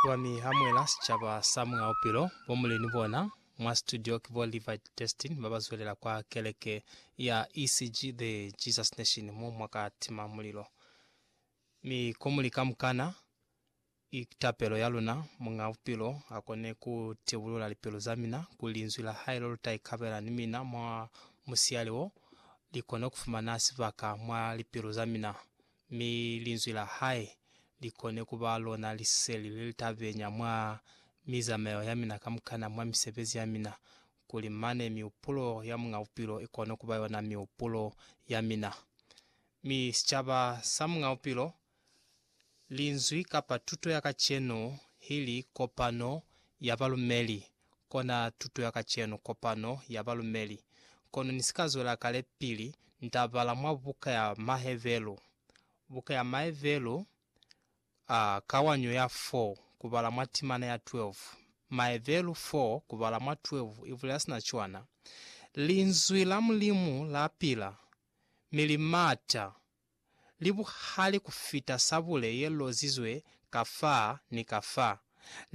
Wa mi hamuela sicaba sa Muñ'a Bupilo, bo Muleni bona mwa situdio ki bo Levi Destin ba ba zwelela kwa keleke ya ECG The Jesus Nation mo mwa ka tima mulilo. Mi ko muli kamukana, ki tapelo ya luna Muñ'a Bupilo a kone ku tibulula lipilu za mina kuli Linzwi la Hae lo lu ta ikabela ni mina mwa musiali wo, li kone ku fumana sibaka mwa lipilu za mina. mi linzwi la hae li kone ku ba lona liseli le li ta benya mwa mizamayo ya mina kamukana, mwa misebezi ya mina, kuli mane mihupulo ya Muñ'a Bupilo i kone ku ba yona mihupulo ya mina. Mi sicaba sa Muñ'a Bupilo, linzwi kapa tuto ya kacenu hili kopano ya balumeli kona tuto ya kacenu, kopano ya balumeli. Kono ni si ka zwela kale pili nta bala mwa buka ya Mahevelu, buka ya Mahevelu, a, kawanyo ya 4, ku bala mwa timana ya 12. Mahevelu 4, ku bala mwa 12, i bulela sina cwana, Linzwi la Mulimu la pila, mi li mata, li buhali ku fita sabule ye lozizwe ka fa ni ka fa,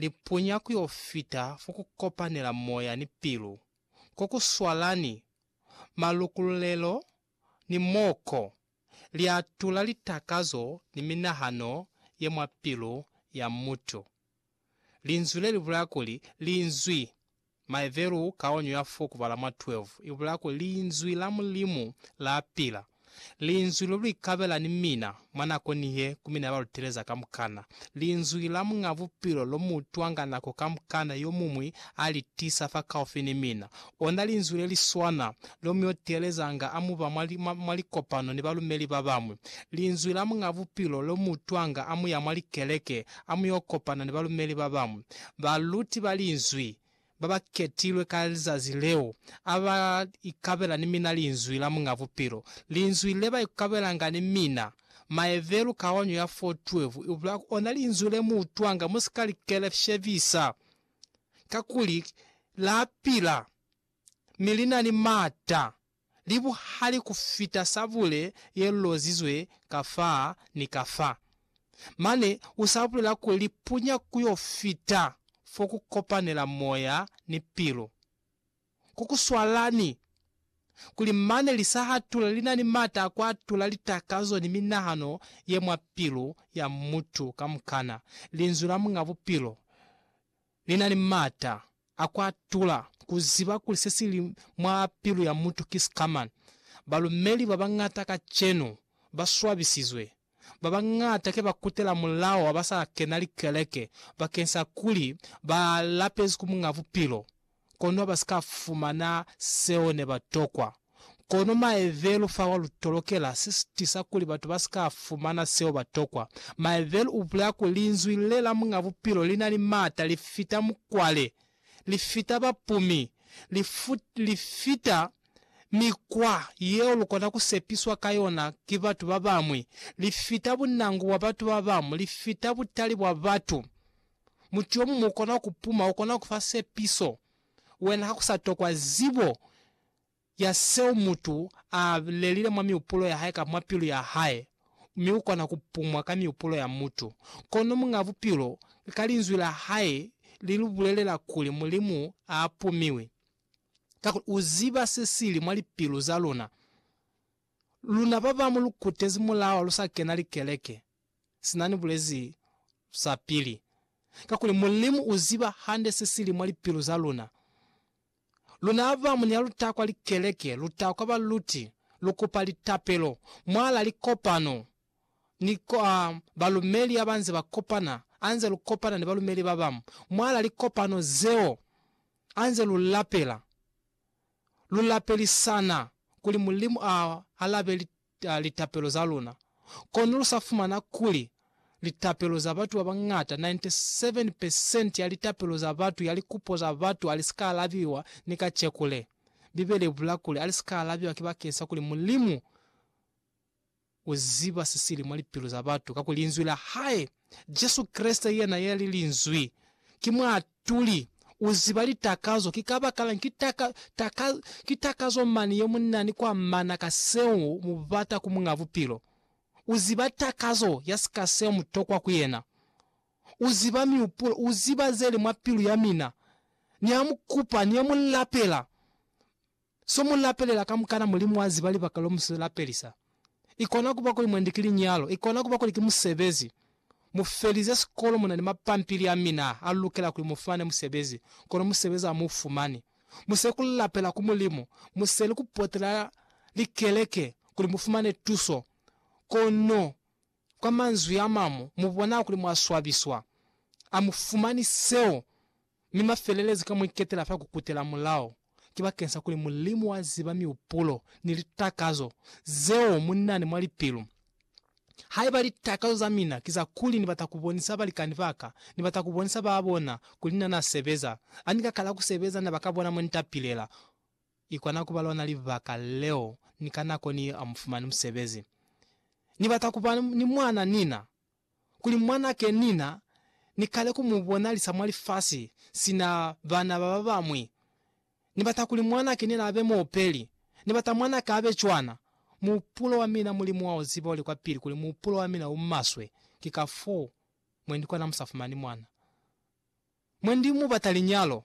li punya ku yo fita fo ku kopanela moya ni pilu, ko ku swalani malukululelo ni mo ko li atula litakazo ni minahano ye mwa pilu ya mutu. Linzwi le li bulaya kuli, Linzwi. Maevelu kaonyo ya fo kubala mwa 12 ibulaya kuli Linzwi la Mulimu la pila, Linzwi lo luli kabela ni mina mwa nako nihe ku mina ya baluteleza kamukana, Linzwi la Muñ'a Bupilo lo mu utwanga nako kamukana yomuñwi a li tisa fakaufi ni mina, ona Linzwi le li swana lo mu yo teelezanga a mu ba mwa, mwa, mwa likopano ni balumeli ba bañwi, Linzwi la Muñ'a Bupilo lo mu utwanga a mu ya mwa likeleke a mu yo kopana ni balumeli ba bañwi, baluti ba Linzwi ba ba ketilwe ka lizazi leo, a ba ikabela ni mina Linzwi la Muñ'a Bupilo, Linzwi le ba ikabelanga ni mina. Maevelu, kawanyo ya fo 12, ibula ku ona Linzwi le mu utwanga, mu si ka li keleshebisa, kakuli La pila, mi li na ni m'ata li buhali ku fita sabule ye lozizwe ka fa ni ka fa. Mane u sa bulela kuli li punya ku yo fita fo ku kopanela moya ni pilu. Ko ku swalani kuli mane li sa hatula li na ni m'ata a ku atula litakazo ni minahano ye mwa pilu ya mutu kamukana. Linzwi la Muñ'a Bupilo Ni na ni m'ata a ku atula ku ziba kuli se si li mwa pilu ya mutu ki sikamana. Balumeli ba bañata kacenu ba swabisizwe. Ba bañata ke ba kutela mulao wa ba sa kena likeleke bakeng sa kuli ba lapezi ku Muñ'a Bupilo, kono ba si ka fumana seo ne ba tokwa. Kono maevelo fawa lu tolokela si tisa kuli batu ba si ka fumana seo ba tokwa. Maevelo u bulela kuli Linzwi le la Muñ'a Bupilo li na ni m'ata, li fita mukwale, li fita bapumi, li, li fita mikwa yeo lu kona ku sepiswa ka yona ki batu ba bañwi, li fita bunangu bwa batu ba bañwi, li fita butali bwa batu. Mutu yo muñwi u kona ku puma, u kona ku fa sepiso, wena ha ku sa tokwa zibo ya seo mutu a lelile mwa miupulo ya hae kamba mwa pilu ya hae, mi u kona ku pumwa ka miupulo ya mutu. Kono Muñ'a Bupilo, ka Linzwi la hae, li lu bulelela kuli Mulimu a pumiwi, kakuli u ziba se si li mwa lipilu za luna. Luna ba bamu lu kutezi mulawa lu sa kena likeleke, sina ni bulezi sapili, kakuli Mulimu u ziba hande se si li mwa lipilu za luna. Luna ba mu ne lu ta kwa likeleke, lu ta kwa baluti, lu kupa litapelo mwalaa likopano ni kwa balumeli ha ba nze ba kopana, ha nze lu kopana ni balumeli ba bañwi mwalaa likopano zeo, ha nze lu lapela, lu lapelisana kuli Mulimu a alabe ta litapelo za luna, kono lu sa fumana kuli litapelo za batu ba bañata, 97 percent ya litapelo za batu ya likupo za batu a li si ka alabiwa ni kaceku le. Bibele i bula kuli a li si ka alabiwa ki bakeng sa kuli Mulimu u ziba se sili mwa lipilu za batu, kakuli Linzwi la hae, Jesu Kreste yena yeli Linzwi, ki mw'a Tuli, U ziba litakazo ki kabakalañi? Ki taka, taka, ki takazo mani yemunani kwa mana ka seo mubata ku Muñ'a Bupilo. U ziba takazo ya sika seo mutokwa ku yena. U ziba miupulo, u ziba zeli mwa pilu ya mina. Niamukupa, niamulapela. So mu lapelela kamukana Mulimu wa ziba libaka lo mu si lapelisa. I kona kuba kuli mwendi ki linyalo, i kona kuba kuli ki musebezi. Mu felize sikolo mu na ni mapampili a mina a lukela kuli mu fumane musebezi, kono musebezi a mu fumani. Mu seli ku lapela ku Mulimu, mu seli ku potela likeleke kuli mu fumane tuso, kono kwa manzwi a mamu mu bona kuli mwa swabiswa. A mu fumani seo. Mi mafelelezo ka mu iketela fa kukutela mulao ki bakeng sa kuli Mulimu wa ziba miupulo ni litakazo zeo mu nani mwa lipilu. Haiba litakazo za mina ki za kuli ni bata ku bonisa balikani ba ka, ni bata ku bonisa ba bona kuli na na sebeza, a ni ka kala ku sebeza na ba ka bona mo ni tapilela. I kona kuba lona libaka leo ni ka nako ni amufumani musebezi ni bata kuba ni mwana nina. kuli mwanake Nina ni kale ku mu bonalisa mwa lifasi sina bana ba ba bañwi. Ni bata kuli mwanake Nina abe muopeli. Ni bata mwanaka abe cwana. Muhupulo wa mina, Mulimu wa u ziba u li kwa pili kuli muhupulo wa mina u maswe, ki ka foo mwendi kona mu sa fumani mwana. Mwa ndi mu bata linyalo.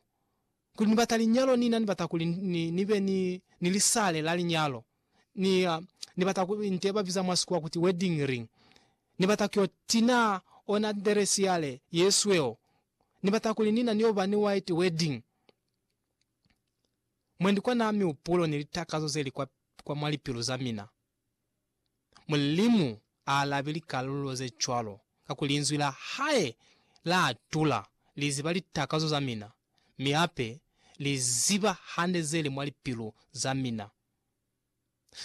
Kuli ni bata linyalo, ni na ni bata kuli ni, ni be ni, ni lisale la linyalo. Ni, ni bata ku, nte ba biza mwa Sikhuwa kuti wedding ring. Ni bata kyo tina ona dress yale ye sweo. Ni bata kuli ni na ni yo ba ni white wedding. Mwendi kwa na mihupulo ni litakazo ze li kwa, kwa mwa lipilu za mina. Mulimu a alabi likalulo ze cwalo, kakuli Linzwi la hae la atula. Li ziba litakazo za mina, mi hape Li ziba hande ze li mwa lipilu za mina.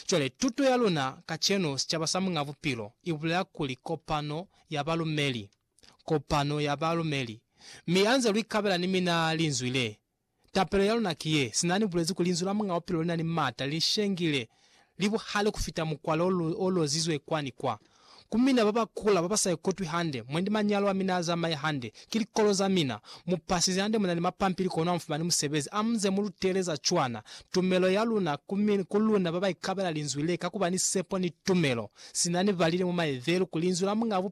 Cwale, tuto ya luna kacenu, sicaba sa Muñ'a Bupilo, i bulela kuli kopano ya balumeli, kopano ya balumeli. Mi ha nze lu ikabela ni mina Linzwi le, Tapelo ya luna ki ye, sina ni bulezi kuli Linzwi la Muñ'a Bupilo li na ni mata, li shengile, li buhali ku fita mukwalo o lozizwe kwa ni kwa. Ku mina ba ba kula, ba ba sa ikutwi hande, mwendi manyalo a mina a zamaye hande, ki likolo za mina. Mu pasize hande, mu na ni mapampili kono ha mu fumani musebezi. A mu nze mu lutele za cwana. Tumelo ya luna ku mina, ku luna ba ba ikabela Linzwi le, ka ku ba ni sepo ni tumelo, sina ni balile mwa Maebelu kuli Linzwi la Muñ'a Bupilo